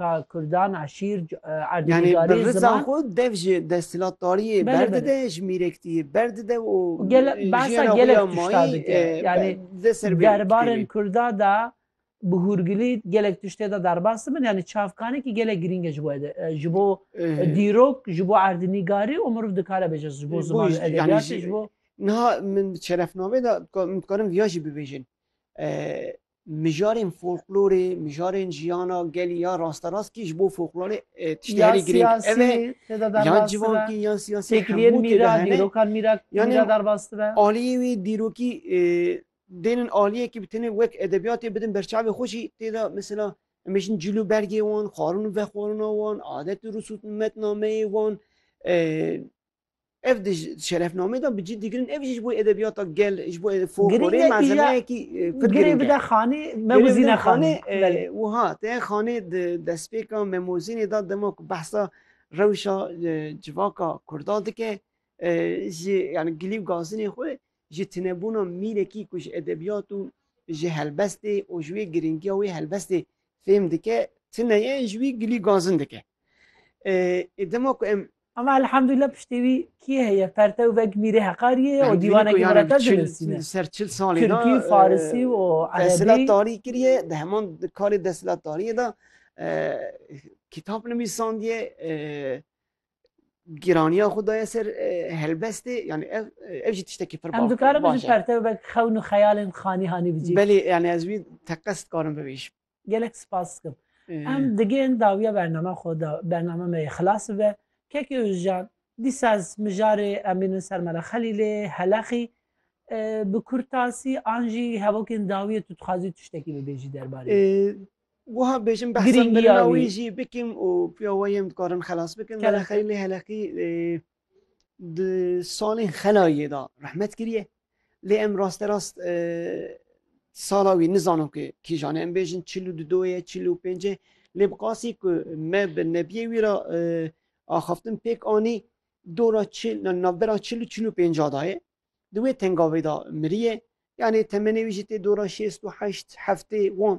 ka Kurdan a şîr Yani bi rıza xo dev ji desthilatdariyê berdide ji mîrektiyê berdide û behsa gelek tişta dike yani derbarên Kurda da bi hûrgilî gelek tiştê de derbas dibin yani çavkanekî gelek girîng e ji bo ji bo dîrok ji bo erdnîgarî û miriv dikare bêje ji bo ziman edebiyatê ji bo Niha min şerefnamê de min dikarim viya jî bibêjin mijarên folklorê, mijarên jiyana gelî ya rasterast kî ji bo folklorê tiştê herî girîng ev e. Yan civakî yan siyasî têkiliyên mîra, dîrokan mîra mîra derbas dibe. Aliyê wî dîrokî dêrên aliyekî bi tenê wek edebiyatê bidin berçavê xwe jî tê de mesela em ê jin cîl û bergê wan, xwarin û vexwarina wan, adet û risûtmetnameyê wan, Ev di şerefnameyê de bi cî digirin, ev jî ji bo edebiyata gel, ji bo folklorê malzemeyekî pir girîng e. Girê bide xanê, memozîne xanê. Wiha te xanê di destpêka memozînê de dema ku behsa rewşa civaka kurda dike ji yani gilî û gazinê xwe ji tinebûna mînekî ku ji edebiyat û ji helbestê û ji wê girîngiya wê helbestê fêm dike tine ye ji wî gilî gazin dike. Dema ku em Ama elhamdulillah piştê wî kî heye pertew vek mîrê heqariyê ye û dîwanekî Muretas dinivîsîne. Ser çil salî de Tirkî, Farisî û Erebî. Desthilatdarî kiriye, di heman karê desthilatdariyê de kitap nivîsandiye, gîraniya xwe daye ser helbestê yanî ev ev jî tiştekî pir baş e. Em dikarin ji pertew vek xewn û xeyalên xanî hanî bicîn? Belê yanî ez wî teqez dikarim bibêjim. Gelek spas dikim. Em digên dawiya bername xwe da bername me yê xilas bibe. Kekê Ozcan, dîsa ez mijarê em bînin ser Mela Xelîlê, Heleqî, bi kurtasî an jî hevokên dawiyê tu dixwazî tiştekî bibêjî derbarê wî? Wiha bêjim behsa mirina wî jî bikim û piya we yên dikarin xelas bikin. Mela Xelîlê, Heleqî Di salên xelayê de rehmet kiriye. Lê em rasterast e, sala wî nizanin ku kîjan em bêjin çil û dudo ye çil û pênc e lê bi qasî ku me bi nebiyê wî ra e, axaftin pêk anî dora çil navbera çil û çil û pênca da ye di wê tengavê da miriye yanê temenê wî jî tê dora şêst û heşt heftê wan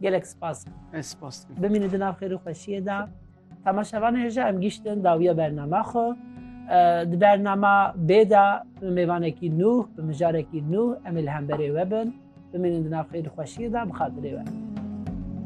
Gelek spas. Ez spas dikim. Bimîne di nav xêr û xweşiyê de. Temaşevanê hêja em giştin dawiya bernama xwe. Di bernama bê de bi mêvanekî nû, bi mijarekî nû em ê li hemberê we bin. Bimînin di nav xêr û xweşiyê de bi xatirê we.